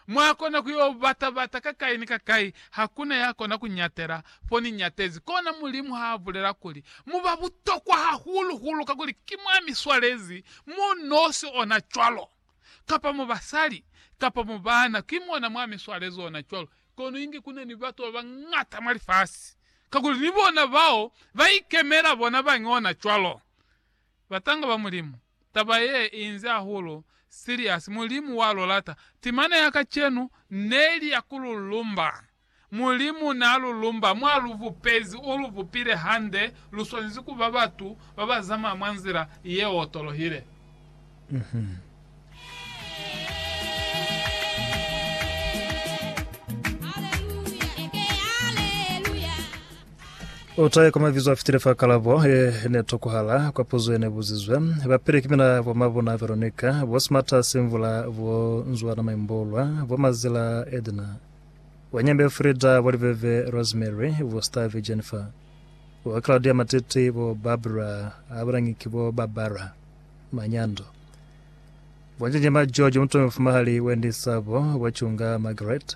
Mwakona ku yo bata-bata kakai ni kakai, hakuna ya kona ku ñatela fo ni ñatezi. Kona Mulimu ha a bulela kuli, Mu ba butokwa hahulu-hulu kakuli ki mwa mi swalezi mo nosi ona cwalo, kapa mo basali, kapa mo bana, ki mona mwa mi swalezi ona cwalo. Kono inge kuna ni batu ba bañata mwa lifasi, kakuli ni bona bao ba ikemela bona bañi ona cwalo, batanga ba Mulimu. Taba ye inze hahulu serious. Mulimu wa lu lata. Timana ya kacenu neli ya ku lu lumba. Mulimu na lu lumba mwa lu bupezi u lu bupile hande. Lu swanezi ku ba batu ba ba zamaya mwa nzila ye otolohile. Utaye kwa mabizo afitile fa kalabo ye ne tokohala kwa puzo yene buzizwe. Bapile kimina bo Mabuna Veronica, bo Smata Simvula, bo Nzwana Maimbolwa, bo Mazila Edna, bo Nyembe Frida, bo Liveve Rosemary, bo Stave Jennifer, bo Claudia Matiti, bo Barbara Abulangi ki bo Barbara Manyando, bo Njenjema George Mutomi Mfumahali Wendy Sabo, bo Chunga Margaret,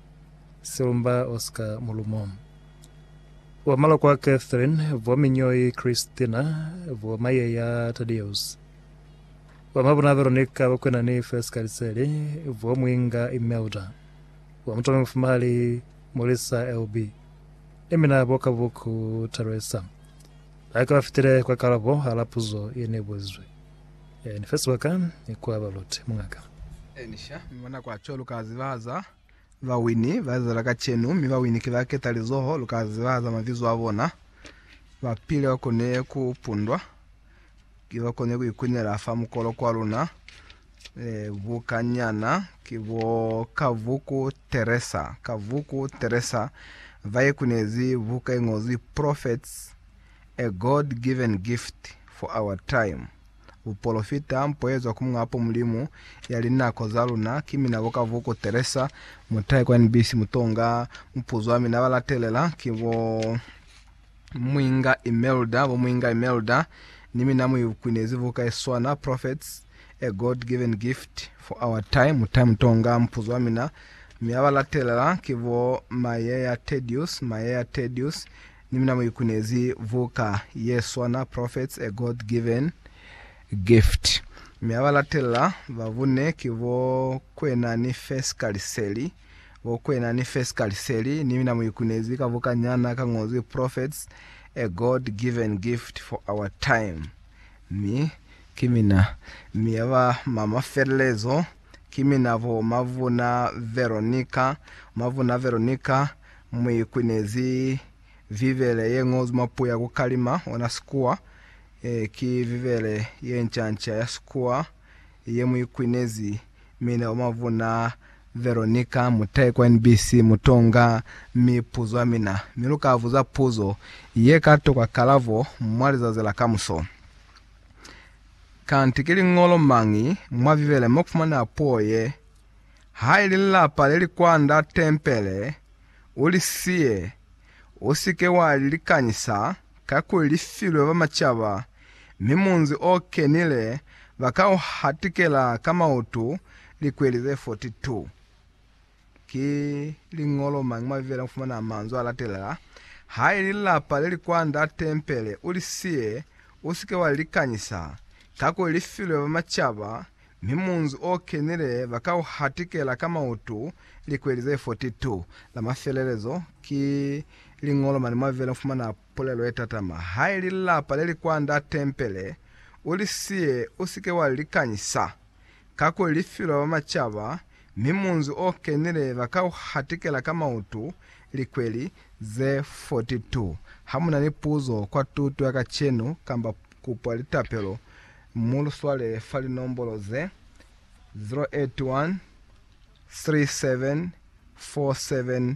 Silumba Oscar Mulumo, Bo Malokwa Catherine, Bo Minyoi Christina, Bo Mayeya Tadeus, Bo Mabuna Veronica, Bo Kwenani First Kaliseli, Bo Mwinga Imelda, Bo Mutome Mufumahali Mulisa LB, ni mina Bo Kabuku Theresa. Baka ba fitile kwa kalabo hala puzo ye ne bulizwe. E, ni fe sibaka kwa ba Lot, mungaka. Elisha, mi mwa nako ya cwalo lu ka zibahaza bawini ba Israele kacenu, mi bawini ki ba keta lizoho, lu ka zibahaza mabizo a bona. Ba pile ba kone ku pundwa, ki ba kone ku ikunela fa mukolo kwa luna. E, buka nyana ki bo Kavuku Teresa, Kavuku Teresa, ba ikunezi buka i ngozwi Prophets, A God given gift for our time, Bupolofita mpoezwa ku Muñapo Mulimu ya linako za luna ki mina bo Kavuku Teresa Mutayi kwa NBC Mutonga Muphuzi wa mina balatelela ki bo Muinga Imelda bo Muinga Imelda ni mina mu ibukwinezi buka ye swana Prophets A God given gift for our time Mutayi Mutonga Muphuzi wa mina mi abalatelela ki bo Mayeya Tedious Mayeya Tedious Ni mina mu ikunezi buka ye swana Prophets, A God-Given Gift. Mi aba latelela ba bune ki bo Kwena ni Fesika Liseli. Bo Kwena ni Fesika Liseli. Ni mina mu ikunezi ka buka nyana ka ngozwi Prophets, A God-Given Gift for Our Time. Mi ki mina. Mi aba mama felelezo. ki mina bo Mavuna Veronica. Mavuna Veronica mu ikwinezi Bibele ye ñozwi mwa puo ya ku kalima, ona Sikuwa. E, ki Bibele ye nca-nca ya Sikuwa ye mu ikwinezi mina bo Mavuna Veronica. Mu tahe kwa NBC, mu to nga mipuzo ya mina, mi lu ka buza puzo ye ka tokwa kalabo mwa lizazi la kamuso. Kanti ki liñolo mañi mwa Bibele mo kufumana puo ye, Haili lilapa le li kwanda tempele, u li siye, u si ke wa li likanyisa, kakuli li filwe ba macaba, mi munzi o kenile ba ka u hatikela ka mautu likweli ze 42? Ki liñolo mañi mwa Bibele mufumana manzwi alatelela, Haili lilapa leli kwand'a tempele, ulisiye, usike walilikanyisa, kakuli lifilwe ba macaba, mi munzi okenile bakauhatikela ka mautu likweli ze 42? La mafelelezo ki liñolo mani mwa Bibele mufumana Pulelo ye tatama ha i li lilapa le li kwa nda tempele, U li siye, u si ke wa li likanyisa, kakuli li filwe ba macaba, mi munzi o kenile ba ka u hatikela ka mautu, likweli ze 42. Ha mu na ni puzo kwa tuto ya kacenu kamba kupo ya litapelo, mu lu swale fa linombolo ze, 081 37 47 400.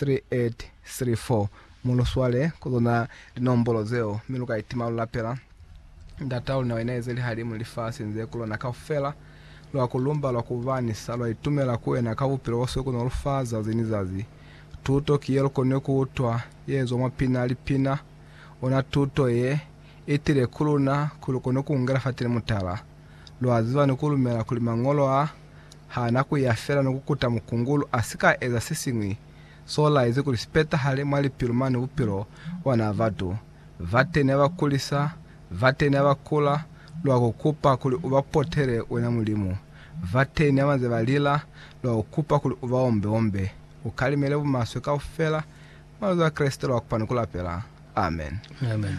3834 Mu lu swale ku zona linombolo zeo, mi lu ka itima lu lapela Ndat'a luna wa inaezeli-halimu lifasi nze ku lona kaufela. Lwa ku lumba lwa ku ba ni sa lwa itumela ku wena ka bupilo bo swe ku no lu fa zazi ni zazi. Tuto ki ye lu konile ku utwa ye zwa mwa pina lipina. Ona tuto ye i tile ku luna kuli lu kone ku ungela fateni mutala. Lwa ziba ni ku lumela kuli Mañolo a ha na ku ya fela ni ku kuta mukungulu a si ka eza se siñwi s'o laezi kuli si petahale mwa lipilu mane bupilo bwa na batu. Vateni a ba kulisa, vateni a ba kula, lwa ku kupa kuli u ba potele wena Mulimu. Vateni a ba nze ba lila, lwa ku kupa kuli u ba ombe-ombe. U kalimele bumaswe kaufela mwa lizo la Kreste lwa kupa ni ku lapela. Amen. Amen.